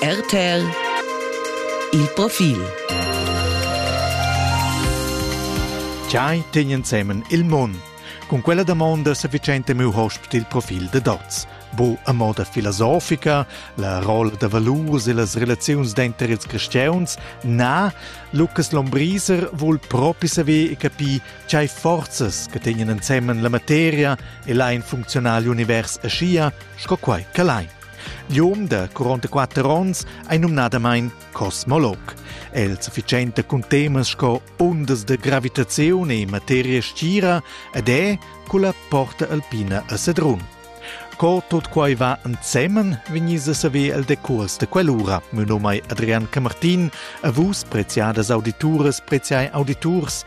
RTL Il profil Giai tegn ensemen il mund. Cun quella damonda sa vicenta miu hosp il profil de dots. Bu a moda filosofica, la rolla da valurs e las relaziuns denter ils cristians, na, Lucas Lombriser vul propi saver e capir tgei forzas che tegnen ensemen la materia e lain funzional l'univers aschia sco quai ch'el ei. Gium da 44 onns ei numnadamain cosmolog. El sufficienta cun temas sco ondas da gravitaziun e materia stgira ed è culla porta alpina a Sedrun. Co tot quai va ensemen, vegnis a saver el decurs de quell'ura. Mio nome è Adrian Camartin, a vus preziadas audituras, preziai auditurs,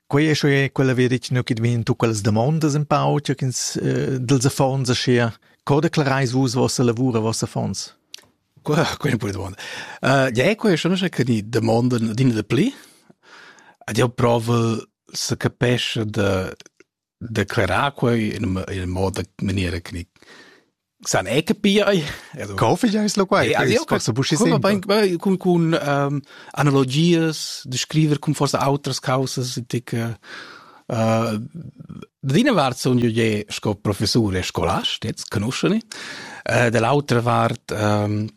Quei è sche quella veritg nu ch'id vegn tu quellas damondas in pau, che ins eh, dels affons aschia. Co declareis vus vossa lavura, vossa affons? Quella è una domanda. Uh, ja, quella è una che ni domanda din de pli. Ad io prova se capesce de declarar quei in in moda maniera che san è capire also Coffee ja ist lo quai also io posso buschi sempre con con ähm, analogias descriver con forse outras causas tic äh, Dina vart son io je sco professore e scolast, jetzt conosceni. Uh, dell'altra vart um,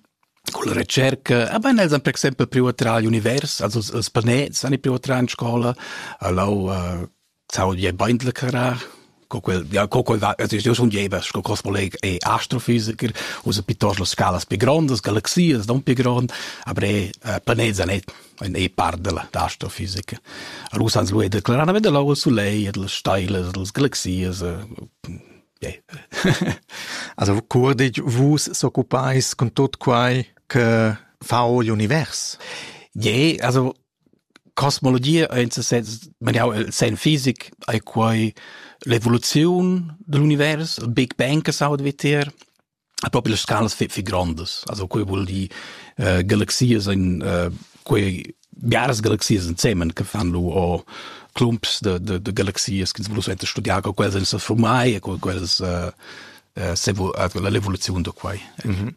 con la ricerca, aber eh, els han per exempel privatral univers, also els planets han privatral in scola, allo uh, Sau die beindle carar co quel ja co quel va es eu sun jeva sco gross colleg e astrofisiker usa piuttosto las scalas più grandes galaxias non più grand aber è planeta net ein e par della astrofisica Russans lui declarar na veda lau sulei e delle steiles delle galaxias yeah. also curdig vus s'occupais con tot quai che fa l'univers je also Cosmologia ei en ses senn maniau el senn fisic, ei quei l'evoluziun digl univers, il Big Bang che s'auda vitier, e propi las scalas fi fi grondas. Also quei vul dir uh, galaxias in uh, quei biaras galaxias ensemen che fan lu o clumps de, de, de galaxias che vul suenter studiar co quellas ein se formai e co quellas uh, uh, la evoluziun da quei. Mm -hmm.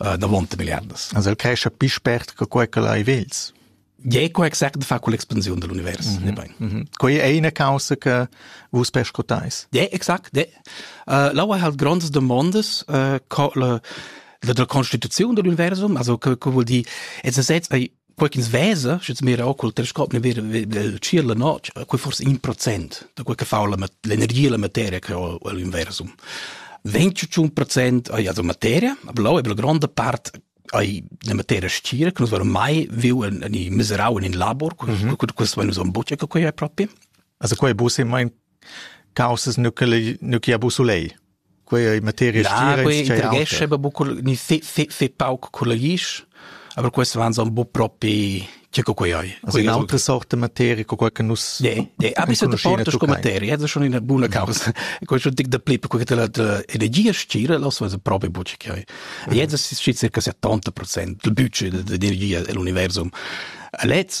äh, davant milliardas. Also el crescha più spert che quei che lai vels. Ja, quei exact fa con l'expansione dell'universo, mm -hmm. mm -hmm. Quei è una causa che vus pescotais. Ja, exact. Ja. Uh, là ha halt grandes demandas uh, la, la, la constituzione dell'universum, also che, che vuol dire, es ist jetzt ein quei ch'ins vesa, sche ins mira col telescop, ne vira il ciel la notg, quei forse in procent da quei che fa l'energia la materia che ho all'inversum. 21 procent ai la materia, blau e la grande part ai la materia stira, che nus verom mai viu in, in miserau in in labor, mhm. questo mm -hmm. questo vai nus on bucce che quei è proprio. Also quei bu se mein caussas nu che nu chi ha busulei quei ei materia stira quei intrighescha aber bucco ni se se se pauc collegis aber questi waren so un po propri che co quei ei also un'altra sorta materia co quei che nus ne ne a bist du portas co materia das schon eine buona causa quei schon dic da plip co che la energia stira lo so proprio bucci che ei jetzt ist circa 70% del budget dell'energia dell'universum Letz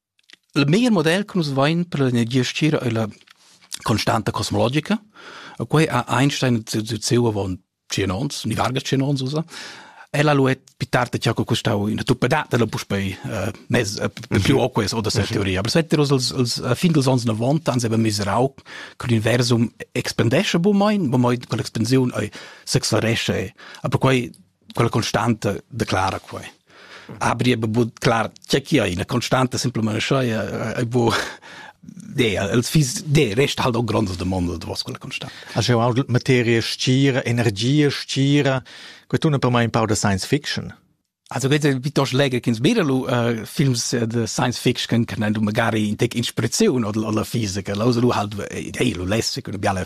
Il meglier model che nus vain per l'energia stgira ei la constanta cosmologica. E quei ha Einstein ziu ziu ziu avon tschien ons, ni vargas tschien ons usa. El ha lu et più tardi che ha costau ina tuppadata la puspei eh, nes eh, più oques oder se teoria. Aber seit wir als als fin dels ans 90 ans haben miserau che l'universum expandesce bu mein, bu mein con l'expansiun ei s'acceleresce. Aber quei quella constanta declara quei abri e bu clar che chi ina constanta simplement schei e bu de els fis de rest halt o grondas domanda da vos quella constanta a schau materia stira energia stira que tu per mai un pau da science fiction Also geht pitos lege kins bidalu uh, films de science fiction kan du magari in tek inspiration oder oder physiker also du halt hey lu lesse kun biale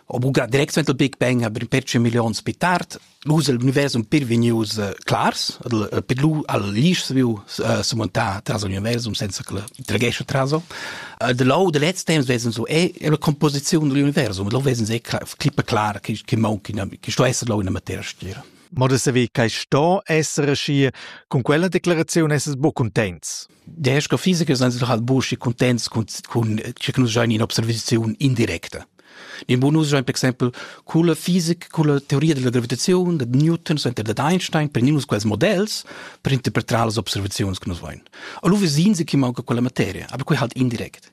ho buca direct suenter Big Bang aber pertge millions pi tard lus el universum per vegnius uh, clars uh, per lu al lisch viu uh, su montar tras universum senza che tragesce traso uh, de lo de letz temps wesen so è la composizione dell'universum lo wesen se clippe klar che che mo che sto essere lo in materia stira Ma de saver che sto essere schi con quella declarazione esses bo contents. Der astrophisiker sind sie doch halt busch contents con con che nus giain in observaziun indirecta. In bonus giain per exempel con la fisica, con la teoria della gravitazione, da Newton, center da Einstein, per nus quels modells per interpretar las observazions che nus voin. Allora vesin sie che manca quella materia, aber quei halt indirect.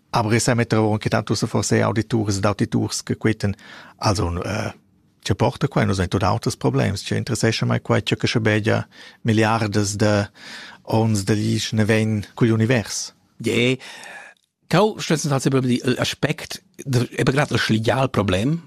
Aber ich metter anche tanto so forse auditurs ed auditurs che queten also äh, che porta qua nos tot auters problems che interessescha mai qua che che begia milliardes de ons de lich ne ven cugl univers je Kau stützen tatsächlich über die Aspekt, eben gerade das Legalproblem,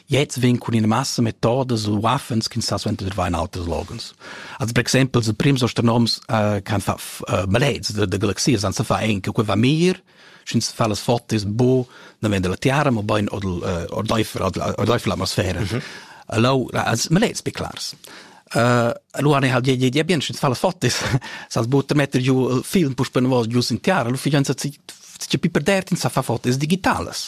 Jetzt vegn cun ina massa metodas u waffens ch'ins sa suenter dvair in auters loghens. Also per exempel, ils prims astronoms uh, kan fa uh, maleds de, de galaxias, san sa fa en che quei va mir, sch'ins fa las fotos bo, dann vende la tiara, ma bain oder ordeifer ordeifer l'atmosfera. Mhm. Allora, als maleds be clars. Uh, allora ne hal je je bien sch'ins fa las fotos, sas butter metter giu film pus penvos giu sin tiara, lu fijanza ci ci piper dert in sa fa fotos digitalas.